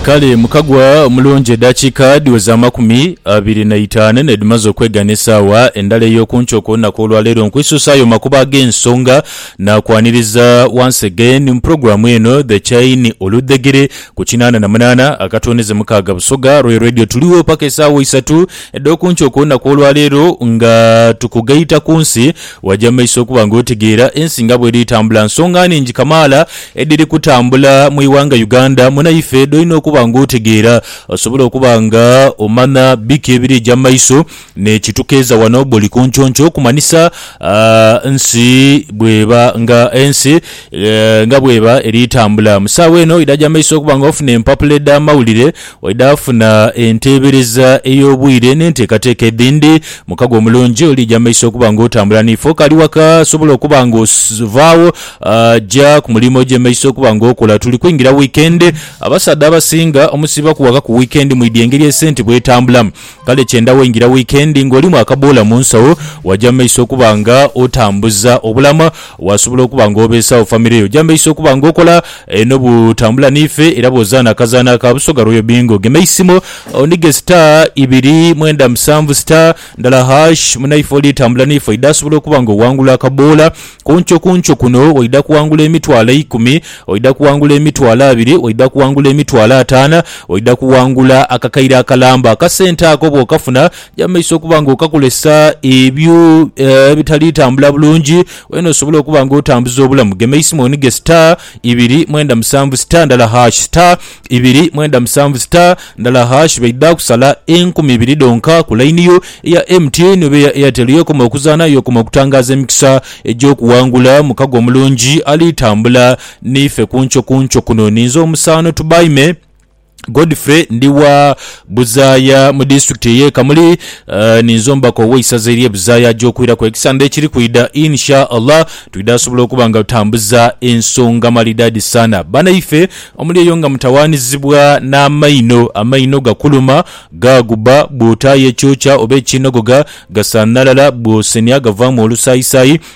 Kale mukagwa omulungi edhakiika dhiweze amakumi abiri na itaanu n'edhimaze okwegana esaawa endala ey'okunkyo ku lunaku olwaleero nkwisuusaayo makubo ag'ensonga naakwaniriza once again mu pulogulaamu eno The Chain Oludhegere ku kinaana na munaana akatwoneze mukaaga Busoga Royal Radio tuligho paka esaawa isatu edh'okunkyo ku lunaku olwaleero nga tukugaita ku nsi waja mu maiso okuba nga otegeera ensi nga bweri etambula nsonga ningi kamaala edhiri kutambula mu ighanga Uganda munaife dhoina okuba nga otegeera osobole okuba nga omanha biki ebirija mu maiso nekitukeeza wano buli kunconco kumanhisa nsi bweba nga ensi nga bweba eri tambula mu saawa eno idhaja mu maiso okuba nga ofuna empapula edha mawulire Oidha funa enteebereza ey'obwire n'enteekateeka edhindi. Mukago omulungi oliija mu maiso okuba ng'otambula n'ife. Okaali waka, sobola okuba ng'ovaagho ja ku mulimu oje mu maiso okuba ng'okola. Tuli kwingira wiikendi. Abasaadha abasinga omusiiba kuwakaku wiikendi mwidhi engeri esente bw'etambulamu. Kale kyenda waingira wiikendi ng'olimu akaboola mu nsawo, waja mu maiso okuba nga otambuza obulamu. Wasobola okuba nga obeesawo famire yo. Oja mu maiso okuba nga okola n'obutambula n'ife era bw'ozaana akazaanho aka Busoga Royal Bingo. Gema eisimu onige star ibiri mwenda musanvu star ndala hash. Munaife oli tambula n'ife oidha sobola okuba nga owangula akaboola. Ku nkyo ku nkyo kuno oidha kuwangula emitwalo eikumi, oidha kuwangula emitwalo abiri, oidha kuwangula emitwalo ataana, oidha kuwangula akakaire akalamba. Akasente ako bw'okafuna, ja mu maiso okuba nga okakolesa ebyo ebitali tambula bulungi, wena osobole okuba nga otambuza obulamu. Gema eisimu onige star. ibiri mwenda musanvu star ndala hash star ibiri mwenda musanvu star ndala hash baidha kusala enkumi ibiri dhonka ku line yo eya MTN oba eya Airtel yokoma okuzaana yokoma okutangaaza emikisa egy'okuwangula mukago omulungi ali tambula niife kunkyo kunkyo kuno ninze omusaano tubaime Godfrey ndi wa Buzaaya mu disitulikiti ey'e Kamuli. Ninze omubaka ow'eisaza ery'e Buzaaya aja okwiraku ekisande ekiri kwidha. In Sha Allah twidha sobola okuba nga tutambuza ensonga maridadi sana. Banaife omuli eyo nga mutawaanizibwa n'amaino, amaino gakuluma, gaaguba, bw'otaayo ekyokya oba ekinogoga gasanhalala, bw'osenhya gavaamu olusaayisaayi,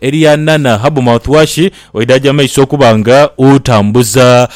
Eria Nana Habu Mouthwash oidhaagya mu maiso okuba nga otambuza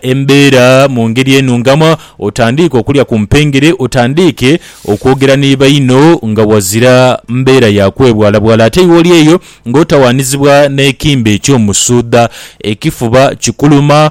embeera mu ngeri enhungamu, otandiike okulya ku mpengere, otandiike okwogera ni baino nga wazira mbeera ya kwebwalabwala ate iwe oli eyo ng'otawaanizibwa n'ekimbe eky'omusuudha, ekifuba kikuluma,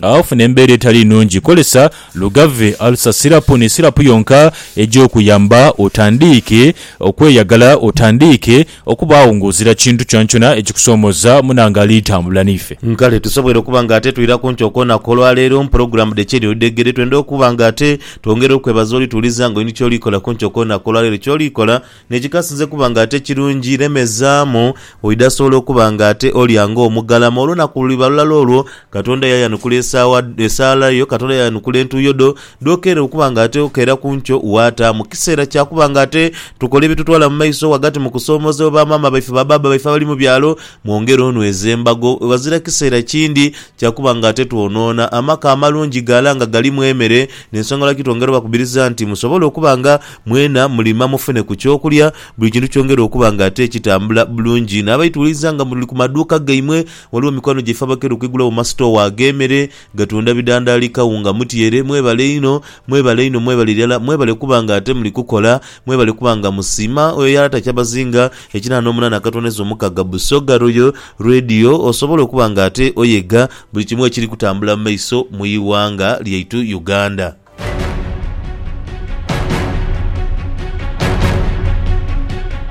Agho ofuna embeera etali nnungi, kozesa Lugave Ulcer Syrup ni sirapu yonka eja okuyamba otandiike okweyagala, otandiike okubaagho ng'ozira kintu kyonakyona ekikusoomoza. Muna nga ali tambula n'ife. Kale tusobwere okuba nga ate twira ku nti okwonaka olwa leero mu pulogulaamu dhe Ky'eri Odhegere, twenda okuba nga ate twongera okwebaza oli tuwuliza nga oli ni ky'oli kola ku nti okwonaka olwa leero. Ky'oli kola. Ni kikasinze kuba nga ate kirungi, lemezaamu, oidha sobola okuba nga ate olya nga omugalama. Olunaku luliba lulala olwo, Katonda yaayanukula esaawa, esaala yo, Katonda yaayanukula entuuyo dho, dh'okeera okuba nga ate okeera ku nkyo waataamu. Kiseera kya kuba nga ate tukola ebitutwala mu maiso ghagati mu kusoomoozebwa ba maama baife, ba baaba baife abali mu byalo, mwongere onweze embago. Ghazira kiseera kindi kya kuba nga ate twonoona. Amaka amalungi ghala nga galimu emere, n'ensonga lwaki twongera obakubiriza nti musobole okuba nga. Mwena mulima mufune ku ky'okulya, buli kintu kyongere okuba nga ate kitambula bulungi. Naabaituliza nga muli ku maduuka gaimwe, ghaligho mikwano gyaife abakera okwigulagho mu masitoowa ag'emere, gatunda bidandaali, kawunga, mutyere. Mwebale inho, mwebale inho, mwebale irala. Mwebale kuba nga ate muli kukola, mwebale kuba nga musiima oyo yalata Kyabazinga ekinana n'omunana akatondeza omukaga Busoga Royal Radio osobole okuba nga ate oyega buli kimu ekiri kutambula mu maiso mu ighanga lyaitu Uganda.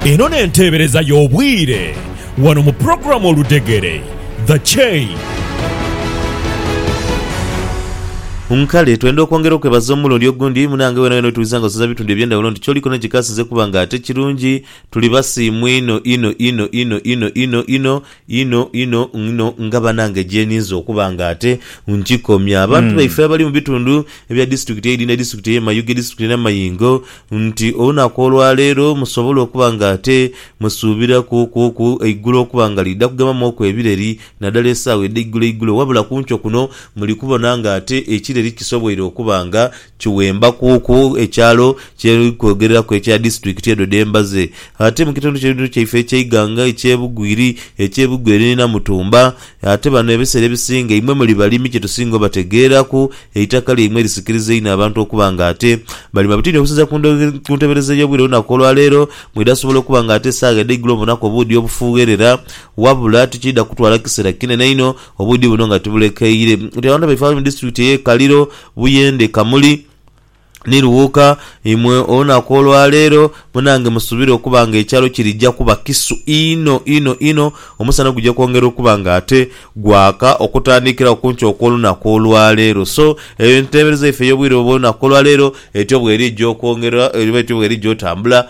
Eno n'enteebereza y'obwire wano mu pulogulaamu Oludegere, The Chain. Nkale twenda okwongera okwebaza omulundi ogundi munange wena wena wetuwuliza nga osoza bitundu ebyendawulo nti kyoli kona kikasiza okuba nga ate kirungi tuli basiimu ino ino ino ino ino ino ino Inho inho inho nga banange gyeninze okuba nga ate nkikomya abantu baife abali mu bitundu ebya disitulikiti eidhi ne disitulikiti eye Mayuge disitulikiti eye Namayingo nti olunaku olwaleero musobole okuba nga ate musuubira ku ku ku eigulo okuba nga liidha kugemamu oku ebireri nadala esaawa edheigulo eigulo wabula kunkyo kuno muli kubona nga ate ekireri kisoboire okuba nga Kiwemba kuku ekyalo kye tuli kwogereraku ekya Disitulikiti edho dhe mbaze. Ate mu kitundu kino kyaife eky'eighanga eky'e Bugwiri, eky'e Bugweri ni Namutumba, ate bano ebiseera ebisinga imwe muli balimi kye tusinga obategeeraku, eitaka lyaimwe lisikiriza inho abantu okuba nga ate balima bitini okusinziira ku ntebereza ey'obwire olunaku olwa leero mwidha sobola okuba nga ate esaagha edh'eigulo mubonaku obuudhi obufuugherera wabula tikiidha kutwala kiseera kinene inho obuudhi buno nga tibulekeire nti abantu baife abali mu Disitulikiti ey'e Kaliro Buyende kamuli ni lughuka imwe olunaku olwa leero munange musubire okuba nga ekyalo kirija kuba kisu inho inho inho omusana guja kwongera okuba nga ate gwaka okutandikirawo kunkya okwolunaku olwa leero so eyo entebereza yaife eyobwire obwolunaku olwa leero etyo bwerija okwongera oba etyo bwerija otambula